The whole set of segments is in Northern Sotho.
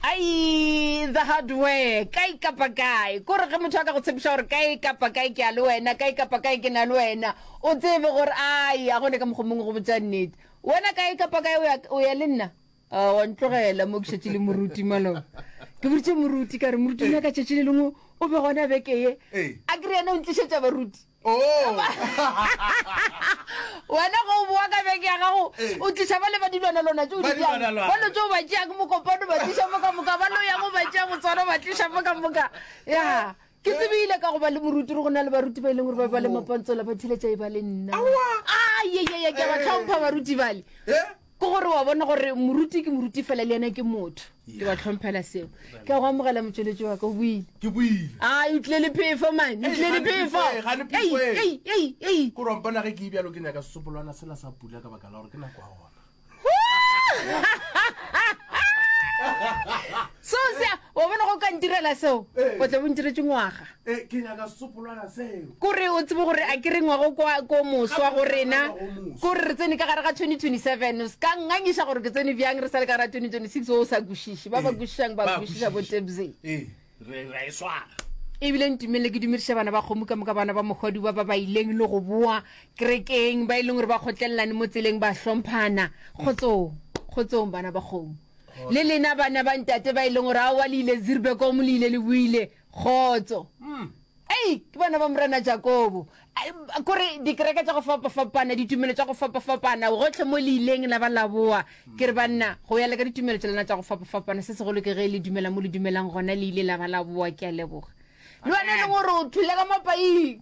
ai the hardware kae kapa kae ko re ge motho a ka go tshepiša gore kae kapa kae ke a le wena kae kapa kae ke na le wena o tsebe gore ai a gone ka mokgwa mongwe go botsa nnete wena kae kapa kae o ya le nna ah, wa ntlogela mo ke šetše le moruti malo ke boditše moruti ka re moruti nyaka tšatši le lengwe o be gona beke ye a kry yena o ntlišetša baruti Oh! wena go o boa ka beke ya gago Ee. o tliša ba le ba dilwana lona tšeo di Ba dilwana bjang lwana. ba lo tšeo ba tšeya ke mokopano ba tliša mo ka moka ba lo yago ba tšeya botswana ba tliša mo ka moka ya ke tsebile ka go ba le moruti re go na le baruti ba e leng gore ba ba le mapontsola ba thiletša e ba le nna Aowa. ayeyeye ke a ba tlhompha baruti bale Eh? ke gore wa bona gore moruti ke moruti fela le ena ke motho ke ba tlhomphela seo ke a go amogela motsweletši wa ka o buile ke buile a o tlile le phefo mane o tlile le phefo gore wampona ge ke e bjalo ke nyaka sesopolwana sela sa pula ka baka la gore ke nako ya gona so se Wa bona, go ka ntirela seo, o tla bo ntiretše ngwaga. Ee, ke nyaka sesopolwana seo. Ko re o tsebe gore a ke re ngwago kwa ko moswa go rena, ko re re tsene ka gare ga 2027, o se ka ngangiša gore ke tsene bjang re sa le ka gare ga 2026, wo o sa kwešiše. Ba ba Ee, kwešišang ba ba kwešiša bo kwešiša. Tebze. Ee, re ra e swara. ebile ntumelele ke dumediše bana ba kgomo ka moka bana ba mokgwadi ba ba ba ileng le go boa kerekeng ba e leng gore ba kgotlelelane mo tseleng ba hlomphana kgotsong kgotsong bana ba kgomo le lena bana ba ntate ba e leng gore aowa le ile zirbekomo le ile le buile kgotso hmm. ei ke bana ba morena jakobo kore dikereke tsa go fapafapana ditumelo tsa go fapafapana gotlhe mo le ileng la ba laboa ke re banna go ya le ka ditumelo tsa lena tsa go fapafapana se segolo ke ge le dumela mo le dumelang gona le ile la ba laboa ke a leboga le bane le gore o thule ka mapaing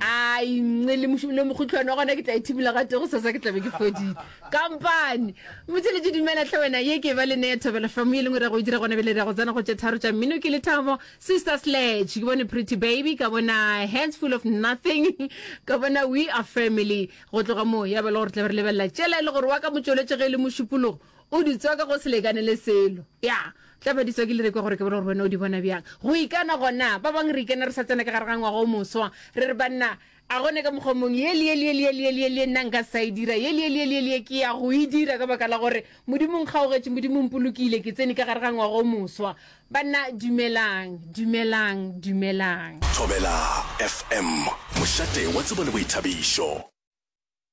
ai nce le mošu- le mokgotlhwane wa gona ke tla e thibela ga tego sasa ke tlabe ke fodile kampane motheletše dumela tlhe wena ye ke ba le neye thobela famo ye lengwe ra go e dira gona bele ra go tsena go tše tharo tša mmino ke lethabo sister sledge ke bone pretty baby ka bona hands full of nothing ka bona we are family go tloga moo ya ba le gore tla be re lebelela tšela e le gore wa ka motšweletše ge e le mošupologo O di tswaka go se lekane le selo. Ya, tla ba di tswa ke le rekwa gore ke bone gore wena o di bona bjang. Go ikana gona. Ba bangwe re ikana re sa tsena ka gare ga ngwaga o moswa. Re re, Banna, a go ne ka mokgwa mongwe, ye le ye le ye le ye le ye le ye le ye nna nka sa e dira, ye le ye le ye le ye le ye ke ya go e dira ka baka la gore Modimo o nkgaogetše, Modimo o mpolokile, ke tsene ka gare ga ngwaga o moswa. Banna, dumelang, dumelang, dumelang. Thobela FM, mošate wa tsebo le boithabišo.